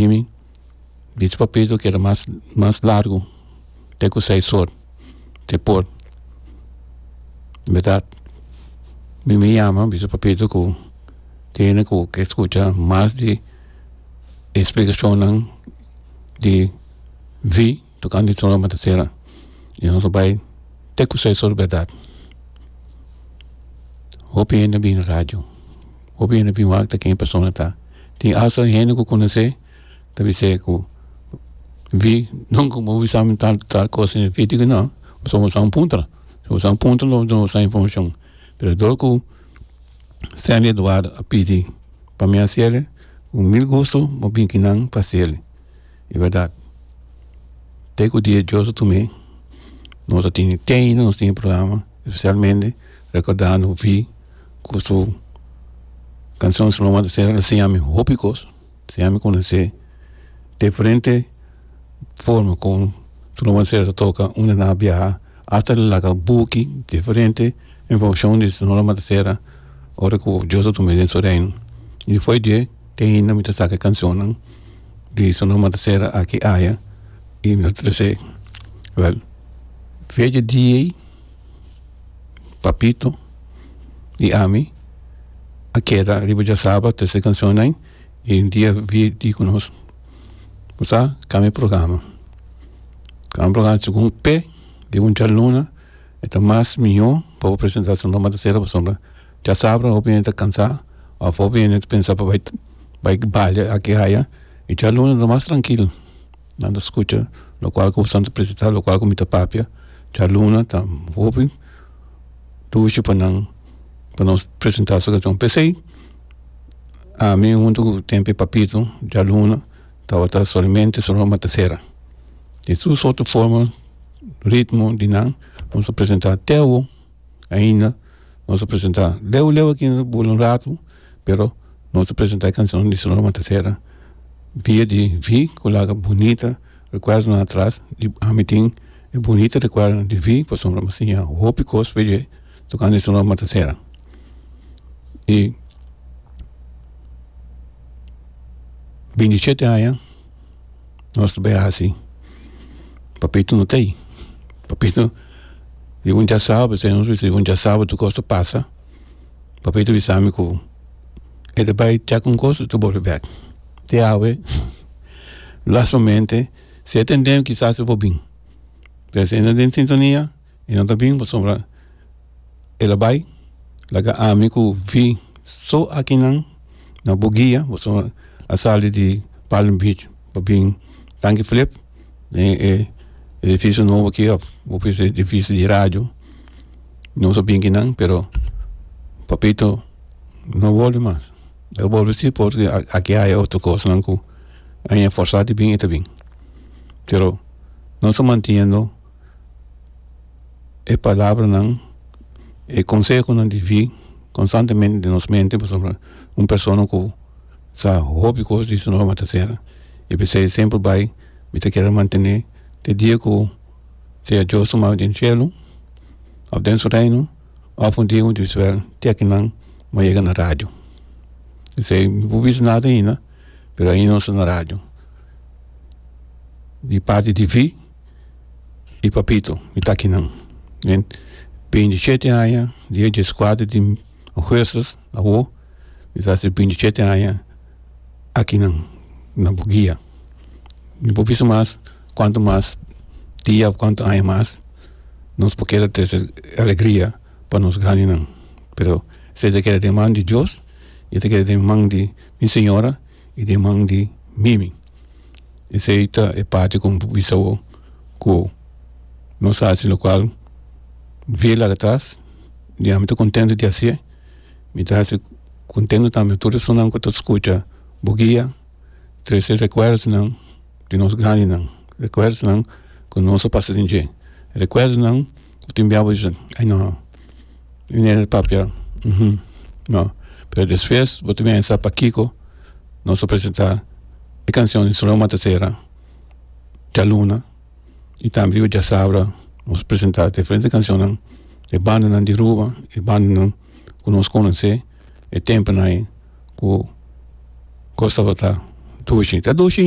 Mimi bichi pa Pedro keda mas mas largu te ku seis or te por berdad mimi yama bisa pa Pedro ku te hende ku ke skucha mas di e splikashonnan di vi. Tocando e tromba ta cera y nos a bay te cu seis ora berdad hopi hende a bin radio hopi hende a bin wak ta ken persona a ta tin asta hende cu conoce ta bisa e cu vi nunca bo bisa mi tal tal cosa en video no pasobra bo ta un puntra si bo ta un puntra no bo duna boso informacion pero dor cu Stanley Eduardo a pidi pa mi a hacer un mil gusto bo bin kinan pa hacer. E bèrdat te ku dia djosu tu me nos a tene te ainda nos tin programa specialmente recordando un fin ku su canción su nomber ta ser a siña mi hopi kos a siña mi konosé diferente forma kon su nomber ta ser ta toka unda nan a biaha hasta nan laga buki diferente informacion di su nomber ta ser ora ku djosu tu me den su reino y despues di e. Te hinda mi ta saca cancionnan di Sonora Matasera aki i aya i mi ta tres'e. Wel, fecha di ei Papito i ami a keda riba diasaba trese cancionnan i un dia bir di cu nos cu sa cambia programa. Cambia programa segun p'e di un djaluna e ta mas miyo pa bo presenta Sonora Matasera pasobra Chasabra hopi hende ta cansá of hopi hende ta pensa pa bai bai balia aki haya y dialuna ta mas trankil nan ta scucha locual cu Santo presenta locual cu mi ta papia dialuna ta hopi dushi pa nan pa nos presenta su cancion pesey ami hunto cu Tempi Papito dialuna tawata solamente su roma ta cera y su soto forma ritmo di nan nos ta presenta te awo. ainda nos ta presenta leu leu aki nos bula un ratu pero nos ta presenta e cancionnan di Sonora Matasera dia di vi cu laga bunita recuerdonan atras y ami tin e bunita recuerdonan di vi pasobra mi a siña hopi cos pa e tocando e Sonora Matasera y bindi shete aña. Nos ta bay hasi papito no ta ayi papito di un dia sabado esei nos bisa di un dia sabado tur cos ta pasa papito bisa ami cu e ta bay chek un cos y ta bolbe bek te awe last momente si e tende kisas e por bin pero si e no den sintonia. y nan ta bin pasobra el a bay laga ami cu vi so aki nan na bo guia pasobra a sali di palm beach pa bin tanki flip den e edificio nobo aki of bo bisa edificio di radio no so bin ki nan pero papito no bolbe mas el bolbe si porque aki hay otro cosnan cu aña forzado di bin e ta bin pero no ta mantiendo. e palabranan e konsehonan di vi konstantemente den nos mente pasobra un persona ku sa hopi kos di su nome ta ser i p'esei e semper bai mi ta kere mantene te dia ku sea dios tuma mi den shelu òf den su reino òf un dia mi ta bisipera tèk nan mi a yega na radio p'esei mi pudi bisa nada aina pero ain nos ta na radio di parti di vi. di papito di takinan den binti shete aña dia dies kuater di oguestis awo mi ta hasi binti shete aña akinan na bugia mi por bisa mas kuantu mas dia of kuantu aña mas nos por keda trese alegria pa nos grandinan pero esei ta keda den man di dios y ta keda den man di mi señora. y den man di mimi. Esey ta e parti cu bo bisa bo cu nos a haci locual via laga atras y ami ta contento di haci e. Mi ta haci contento tambe tur e personanan cu ta scucha bo guia tres e recuerdonan di nos grandinan, recuerdonan cu nos a pasa den dje, recuerdonan. cu tin biabu dicen ay no mi no e papia uhm no pero despues bo ta bini a sa pakico nos a presenta e cancion di Solomon Matasera Cha Luna y tambe Rio Diasabra nos presenta diferente cancionnan e bandanan di Aruba e bandanan cu nos conoce e temponan ayi cu cos tabata dushi ta dushi.